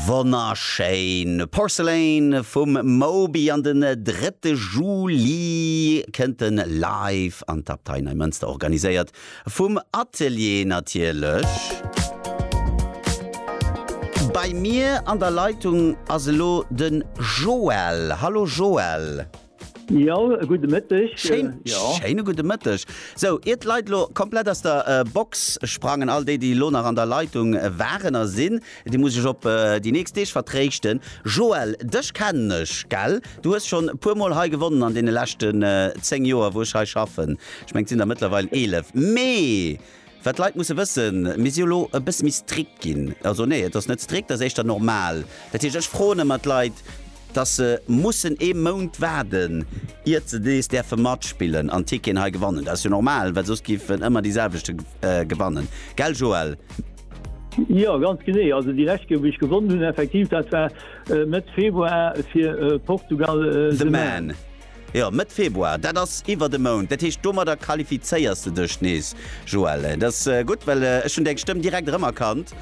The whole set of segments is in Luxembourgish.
Wonnerschéin! Porcelain vum Moby an den drëtte Juli kënnt en live an d'Abtei Neimënster, organiséiert vum Atelier natierlech. Bei mir an der Leitung ass elo de Joël. Hallo Joël! Jo, e gudde Mëtteg. Schéin, Jo. schéine gudde Mëtteg. Sou, ier d'Leit elo komplett aus der äh, Box sprangen, all déi, déi elo nach an der Leitung waren a sinn, déi muss ech op äh, déi nächst Deeg vertréischten. Joël, dech kennen ech, gell? Du hues schonn e puer Mol hei gewonnen an deene leschten äh, 10 Joer, wou ech hei schaffen. Ech mengen, et sinn der mëttlerweil 11. Mee Wat d'Leit musse wëssen, Mir si elo e bësse méi strikt ginn. Also nee, et ass net strikt, et ass éischter normal. Dat heescht, ech froen ëmmer d'Leit, dass se mussen ee Mount waarden, iert se nees däerfe matspillen an Ticketen hei gewannen. Dat ass jo normal, well soss géif en ëmmer déi selwechte gewannen. Gell Joël? Jo, ganz genee. Also déi lescht Kéier, wou ech gewonnen hunn, effektiv, dat war Mëtt Februar fir Portugal, The Man. Jo, Mëtt Februar, dat ass iwwert e Mount. Dat heescht, domadder qualifizéiers de dech nees, Joël. Et ass gutt, well ech hunn deng Stëmm direkt erëmerkannt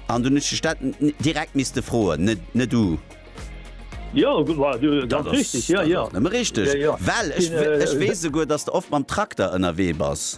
an dunn hunn ech dech dat direkt misste froen, net, net du. Jo, ganz richteg, jo, jo. Dat ass nëmme richteg, well ech weess souguer, dass de oft mam Trakter ënnerwee bass.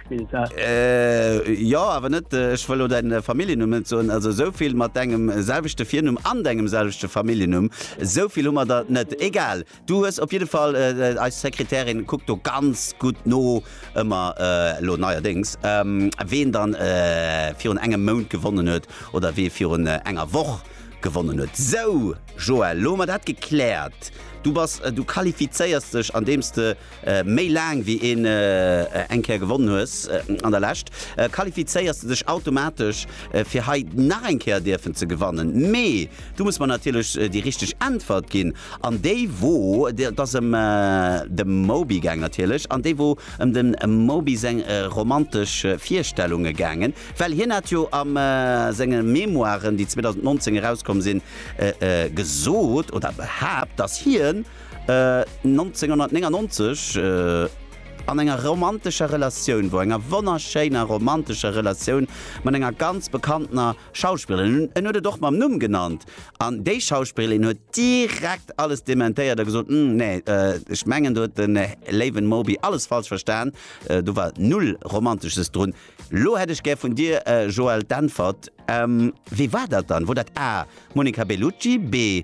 gespillt hat. Äh jo, awer net, ech wëll lo däin Familljennumm net soen, also esou vill mat dengem selwechte Virnumm an dengem selwechte Familljennumm, esou vill hu mer der net. Egal, du hues op jidde Fall, eis Sekretärin kuckt do ganz gutt no ëmmer, lo neierdéngs, ween dann virun engem Mount gewonnen huet oder wee virun enger Woch gewonnen huet. Sou, Joël, lo hu mer dat gekläert. Du bass, du qualifizéiers dech andeems de. Méi laang wéi een eng Kéier gewonnen hues an der Lescht, qualifizéiers de dech automatesch fir hei nach eng Kéier dierfen ze gewannen. Mee du muss mer natierlech déi richteg Äntwert ginn an déi wor, et ass ëm de Moby gaang natierlech, an déi wor ëm dem Moby seng romantesch Virstellunge gaangen, well hien hat jo a senge Memoiren, déi 2019 erauskomm sinn, gesot oder behaapt, dass hien, 1999 an enger romantescher Relatioun wor, enger wonnerschéiner romantescher Relatioun mat enger ganz bekanntener Schauspillerin, en huet et och mam Numm genannt, an déi Schauspillin huet direkt alles dementéiert a gesot, Hm, nee, ech mengen do huet de léiwen Moby alles falsch verstan, do war null Romantesches drun. Lo hätt ech gär vun dir Joël d'Äntwert, Wee war dat dann? Wor dat A, Monica Bellucci, B,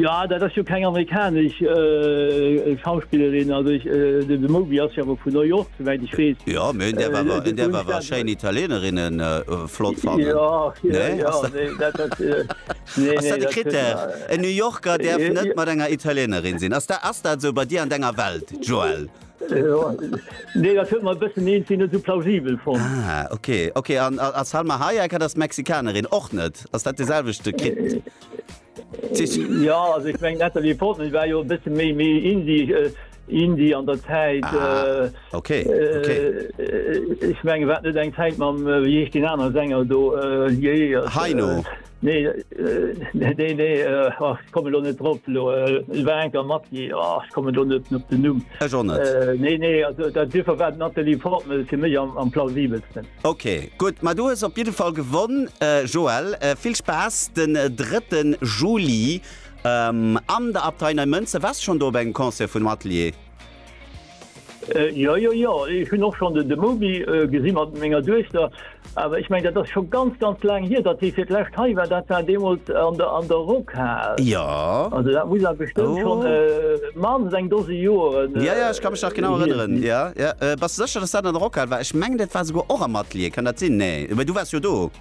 Ja dat ass jo keng amerikanesch äh, Schauspillerin also ich, äh, de Moby ass ja vu New York soweit ich wees. Ja mé hun der war hun der war schein Italienerinnen äh, flott fan. Ja, nee, ja, nee, dat, dat, äh, nee, nee, dat krit der en New Yorker der net mat enger Italienerin sinn ass der ass dat sou bei dir an denger Welt Joel. Nee, dat huet mer e bëssen eenzi net esou plausibel fonnt. Ah, okay, okay. An a Salma Hayek, dat ass d'Mexikanerin, och net? Ass dat de selwechte Krit? Ja, also ech meng Natalie Portman, déi war jo e bësse méi méi Indie. Äh, Indie an der Zäit. Ah, äh, okay, okay. Äh, ech menge wat net eng Zäit mam, äh, wéi heescht den aner Sänger do, äh, Jee. Heino. Äh, Nee nee nee komme lo net drop lo war enker mat komme do net op den Numm. Ech och net. Nee nee dat Differ wat Nathalie Portmel fir méi am plausibelsten. Ok gutt, ma du hues op jidde Fall gewonn Joël. Vill Spaass den 3 Juli an der Abtei Neimënzer. Waars de schonn do op engem Concert vun dem Atelier? Jo, jo, jo, ech hunn och schonn de Moby gesi mat menger Duechter. Awer ech mengen, dat ass scho ganz, ganz laang hier, datt dee fir d'lescht hei war. Dat war deemools an der, an der Rockhal. Jo. Also dat muss awer bestëmmt schonn maanst eng Dose Joeren hier sinn. Jo, jo, ech ka mech nach genau erënneren. Jo, jo. Bass de sécher, datt dat an der Rockhal war? Ech mengen, dat war souguer och am Atelier. Kann dat sinn? Nee, mee du waars jo do.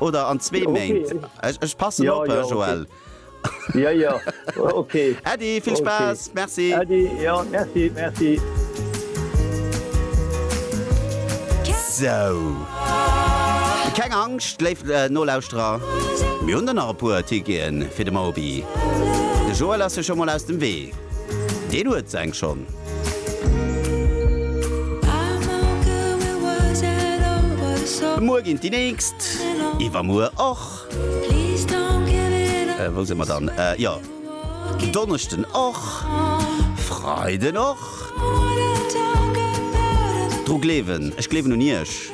Oder an zwee Méint. Ech passen op, Joël. Äddi, vill Spaass. Merci. Sou, keng Angscht, léif Nolauschterer, mir hunn der nach e puer Ticketen fir de Moby. De Joël ass jo scho mol aus dem Wee, deen huet seng schonn. Muer ginn déi nächst, iwwermuer och. Wou si mer dann? Jo, Donneschden och, Freiden och. Dru gleewen, ech gleewen un Iech.